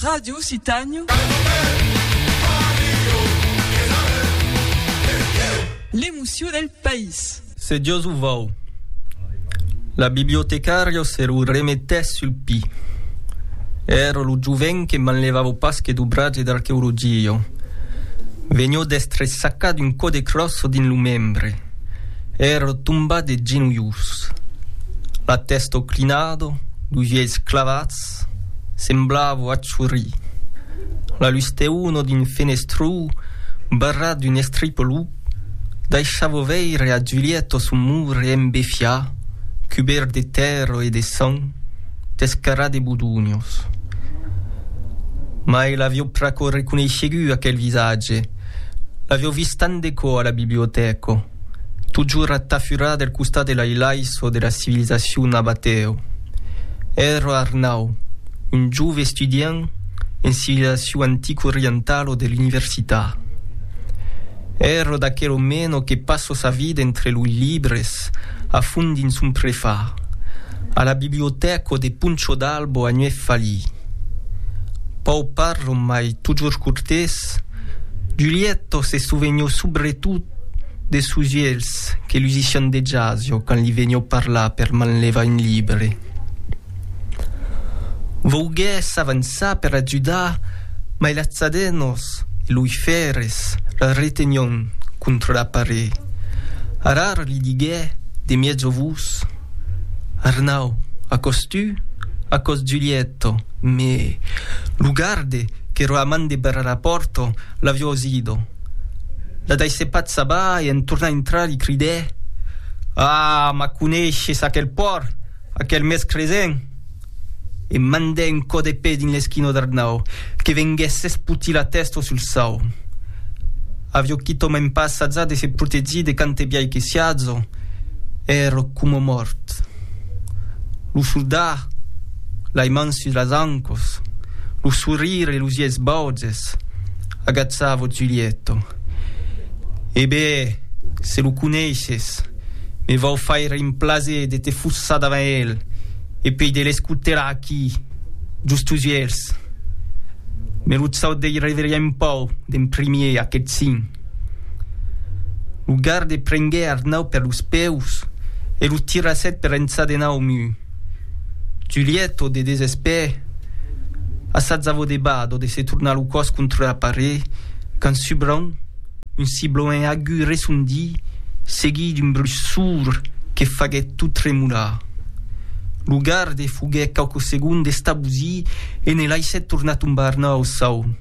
Radio Occitània. L'emoció del país. Se Dios o vòu. La bibliotecària se lo remetèt sul pi. Èra lo joven que manlevava pas que dobratge d'arqueologia. Venió d'èstre sacat un còde cròs dins lo membre. Ère tombat de genolhs, la tèsta oclinada, los uèlhs clavats, semblava achorir. La lusteuna d'un fenestrau barrat d'un estripalup daishava veire a Julieta son mur embefiat, cubèrt de tèrra e de sang, descarat de bodonhos. Mai l'aviá pr'aquò reconeishegut aquel visatge. L'avèu vist tant de cò a la bibliotèca, totjorn atafurat del costat de l'ailaiço de la civilizacion nabatèu. Èra Arnau, un jove estudiant en civilizacion antico-orientalo de l'universitat. Èra d'aquel omeno que passa sa vida entre loi libres, a fond dins son prefar. A la bibliotèca de Poncho d'Albo a Nuèvfalí. Pau parlo mai totjorn cortés, Giulietto se sovenió subretot de sos uelhs que lusissián de jasio quand li venió parlar per manlevar un libre. Vouguè s'avançar per ajudar, mai las tzadenos e loi fèrres la retenión contra la paret. Arar li diguè de mièjo vos. Arnau, Acòs tu, acòs Giulietto, me lo garde qu'ero a man de Berrarapòrto l'avió osido. La daissè pas abar e en tornar intrar li cridè, Ah, m'aconeishes aquel pòrt, aquel mès cresent? E mandè un cò de pè dins l'esquinò d'Arnau, que venguèt s'espotir la tèsta sul sau. Avió quitòmèn pas assajat de se protegir de quante biais que siá jo, èrò coma mòrt. Lo soldat, lai mans sus las ancòs, lo sorrire e los ièis bauges, agachava Giulietto. E be, se lo coneishes, me vau faire un plaser de te fossar davant el e pei de l'escotelar aquí, just tus uèlhs. Me lo chau dei reveria un pau d'en primier, aqueth sin. Lo garde prengué Arnau per los peus e lo tirasset per ençà de nau, Mu. Julièto, de desespèr, assajavo de bador de se tornar lo còs contra la paret, quand subrenh un sibloènh agut resondí, seguit d'un bruch sourd que faguèt tot tremolar. Lo garde foguèt quauques segondes estabosit e ne laissèt tornar tombar nòu saun.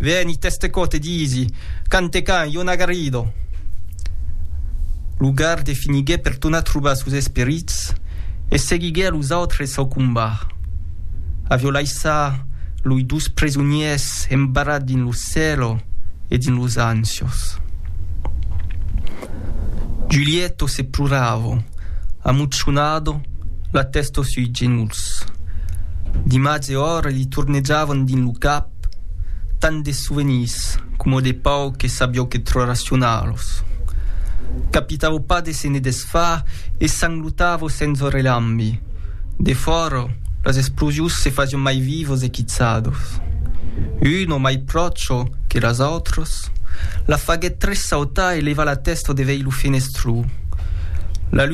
Veni teste co te disi, can te can, io n'agarido. Lo garde finiguè per tornar trobar sos esperits e seguiguè a los autres sau combat. Avió laissà loi dos presoniers embarrats dins lo cèlo e dins los ansios. Giulietto se ploravo, amucionado, La tèsto sui genolhs. D'imatge òr li tornejavan dins lo cap, tant de sovenirs, coma de pauc e sabió que trò racionar los. Capitavo pas de se ne desfar e sanglotavo sens o relambi. De fòra, las explosius se fasión mai vivos e quitzados. Uno, mai pròcho que las autras, la faguèt tressautar e levar la tèsto de veir lo fenestró.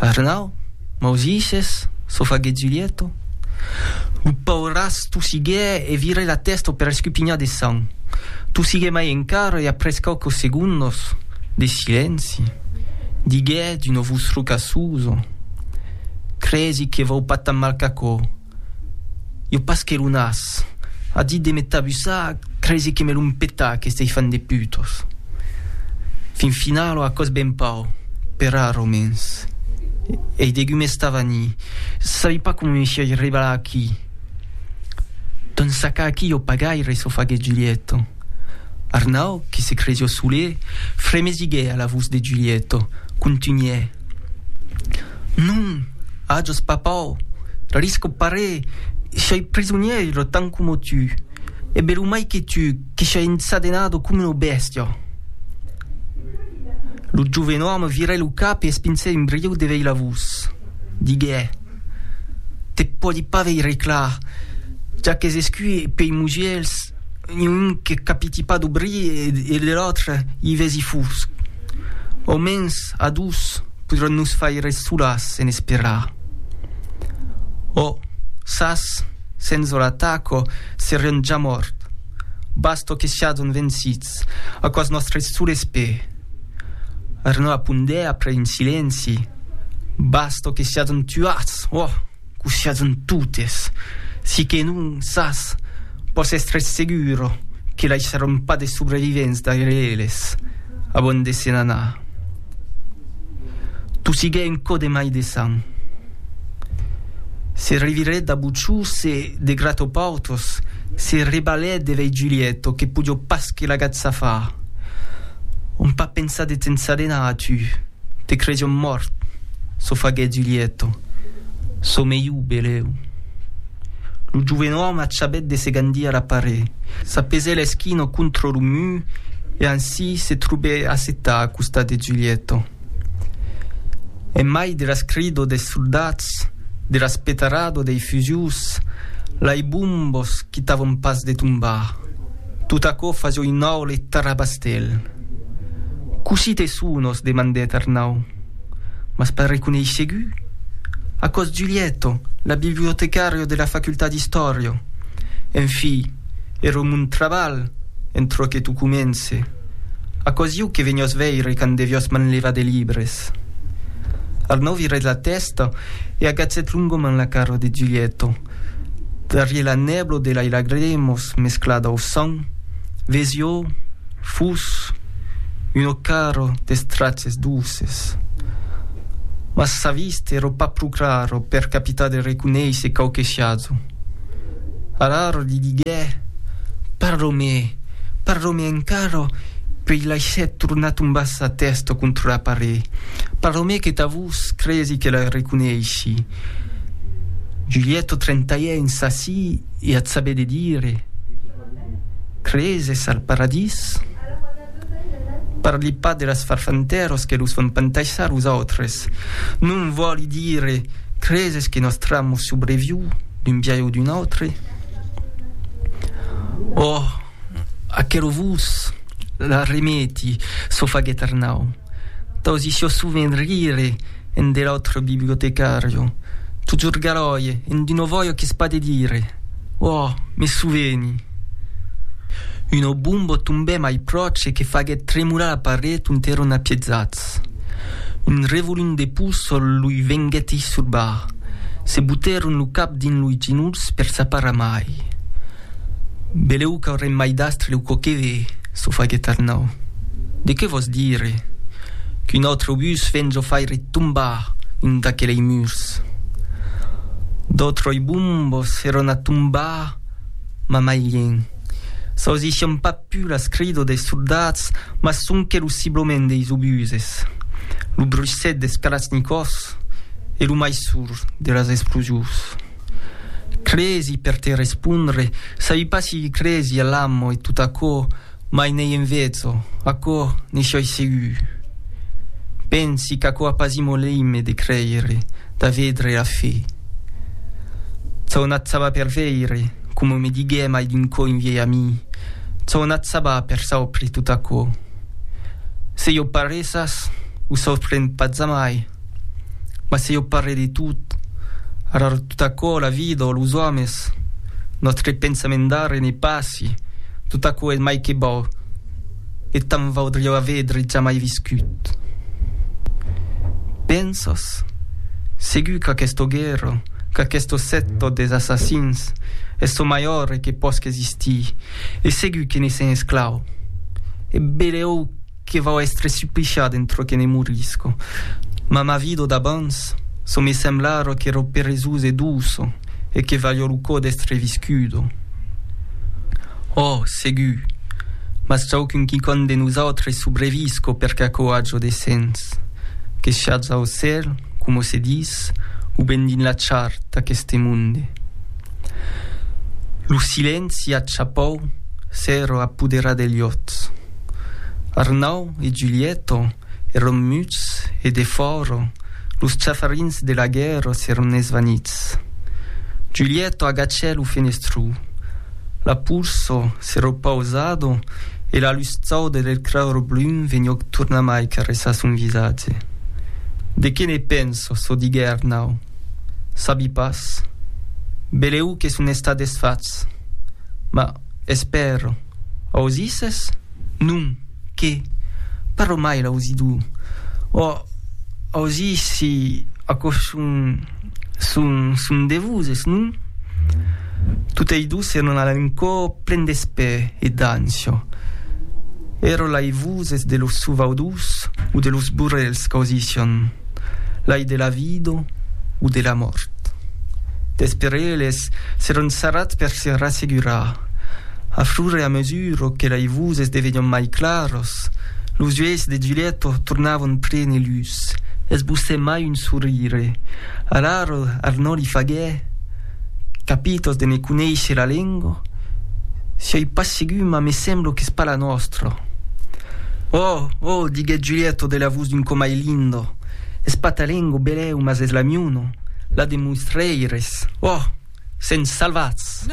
Arnau, Mausices, çò faguèt Zulietto. Lo pauràs tossiguè e virè la tèsta per escupinhar de sang. Tossiguè mai encara e après quauques segondos de silenci, diguèt d'una vos roca susa, Cresi que vau pas tan mal qu'aquò. Iò pas que lo nas a dit de me tabussar, cresi que me lo mpetà aqueste hifan de putos. Fin finalo a còs ben pau, per ar romens. Ei degut mes tavani, sabi pas coma me siei rebalat aquí. Ton sacà aquí iò pas gaire, s'o faguèt Giulietto. Arnau, que se cresió solet, fremesiguèt a la vos de Giulietto, contunhè. Non, ajos papau, risco paré, shoi prisonièiro tant coma tu, e belumai que tu, que shoi ensadenado coma una bèstia. Lo joven òme virai lo cap e espinsèi un brieu de veilavós. Diguè, te pòdi pas veire clar, ja qu'es escur pei mugièrs. ni un que capiti pas lo bri e de l'autre i vesi fusc. Au mens a dus podràn nos faire solas en esperar. Ò, sas, senza la taco serion ja mòrt. Basta que siadon vencits, aquò's nòstre sol espè. Arnau apondèt après un silenci, Basta que siadon tuats, ò! Quò siatz-n totes, si que non sas, pòs èstre seguro que laissaròn pas de subrevivents darrèr eles abans de se n'anar. Tossiguèt un cò de mai de sang. Se revirèt dab Uchús e, de grat o pautós, se rebalèt de vei Julièto que podió pas que l'agatzafar. Òm pas pensar de te'n sadenar, atu, te cresión mòrt. çò faguèt Julièto, çò melhor, beleu. Lo joven òme achabèt de se gandir la paret, sa pesèla eschina contra lo mur e ansi se trobèt assetat a costat de Julièto. En mai de las cridor des soldats, de las petarador dei fusils, lai bombos quitavan pas de tombar, tot aquò fasiá un aule tarabastèl. Cossí te sonos? demandèt Arnau. m'as pas reconeissegut? Aquò's Giulietto, la bibliotecàrio de la facultat d'istòria. En fi, ero mon trabalh, en çò que tu comence. Aquò's ieu que veniò's veire quand deviò's manlevar de libres. Arnau virèt la tèsta e agatzèt longament la cara de Giulietto. Darrier la nèblo de lei lagrimos mesclada au sang, vesió fus un ocaro d'estraches douces. Mas sa vista ero pas pro craro per capitar de reconeisser quauque siazo. Araro li diguè, Parlo-me, parlo-me encara puei laissèt tornar tombar sa tèsta contra la paret, parlo-me que ta vos cresi que la reconeissi. Giulietto trentaiè in sassi e at sabè de dire, Creses al paradís? Parli pas de las farfantèros que los fan pantaissar los autres. Non vòli dire, creses que nòstr'amo subreviu d'un biais o d'un autre? Òh! Aquerò vos la remeti, çò faguèt Arnau. T'ausissi-ò sovent rire en de l'autre bibliotecàrio. T'o jorgaròie en d'uno vòio qu'es pas de dire. Òh, me soveni! Uno bombo tombè mai pròche e que faguèt tremolar la paret ont èron apiezats. Un revolon de poçol loi venguèt eisurbar. Se botèron lo cap dins loi genolhs per s'aparar mai. Belèu qu'aurem mai d'astre lèu quò que ve çò faguèt Arnau. De qué vòs dire qu'un autre obús ven çò faire tombar un d'aquelei murs? D'autroi bombos fèron a tombar ma mai lien. S'ausissián pas pus las cridos dei soldats mas sonque lo sibloment deis obuses, lo bruissèt des kalachnikovs e lo mai sourd de las explosius. Cresi, per te respondre, sabi pas si cresi a l'amo e tot aquò, mai n'ei en vezzo, aquò ne sioi segur. Pensi qu'aquò a pas imo leime de creire, d'a vedre a fe. Çò n'at sabà per veire, coma me diguè mai d'un cò un viei ami, çò n'at sabà per saupre tot aquò. Se jo paressas, o saupren pas jamai. Mas se jo parle de tot, arar tot aquò, la vida o los òmes, nòstre pensament d'ara e ne passi, tot aquò es mai que bò e tant vaudriá avedre jamai viscut. Pensas? Segur qu'aquesta guèrra, qu'aquesta secta des assassins es çò mai òrre que pòsca existir e segur que ne sèm esclau. E belèu! que vau èstre suplichat en trò que ne morisco. Ma ma vido d'abans, çò me sembla ara qu'èro peresós e douço, e que valio lo cò d'èstre viscudo. Òh! segur! Mas traucun quicòm de nosautres subrevisco per qu'aquò ajo de sens. Que siatz au cèl, coma se dis, o ben dins la char d'aqueste monde. Lo silenci acha pòu s'èro apoderar de lhòts. Arnau e Giulietto èron muts e defòra los chafarins de la guèrra s'èron esvanits. Giulietto agachè lo fenestró, la pulsa s'è repausada e la lustada del cràro brun vegnoc tornamai caressar son visatge. De qué ne pensa çò diguè Arnau. Sabi pas. Belèu que son estat desfachs. Mas. Espèro. Ausisses? Non, qué? Parlo mai l'ausidor. Ò, ausi si aquò son, son, son de voses, non? Totei dos èran a l'encò plen d'espè e d'ansia. Èro lai voses de los sovaudors o de los burrèls qu'ausissián. Lai de la vida o de la mòrt. D'espereles seron sarrats per se rassegurar. A fur e a mesura que lai voses devenion mai claras, los uelhs de Giulietta tornavan prene lutz, esbossè mai un sorire. Alara Arnò li faguè. Capitos de ne conéisher la lengo? Sioi pas segur, mas me semblo qu'es pas la nòstra. Oh! Oh! diguèt Julièto de la vos d'un comai lindo, es pas ta lengo, belèu, mas es la miuna, la de mois rèires. Oh! Sèn salvats!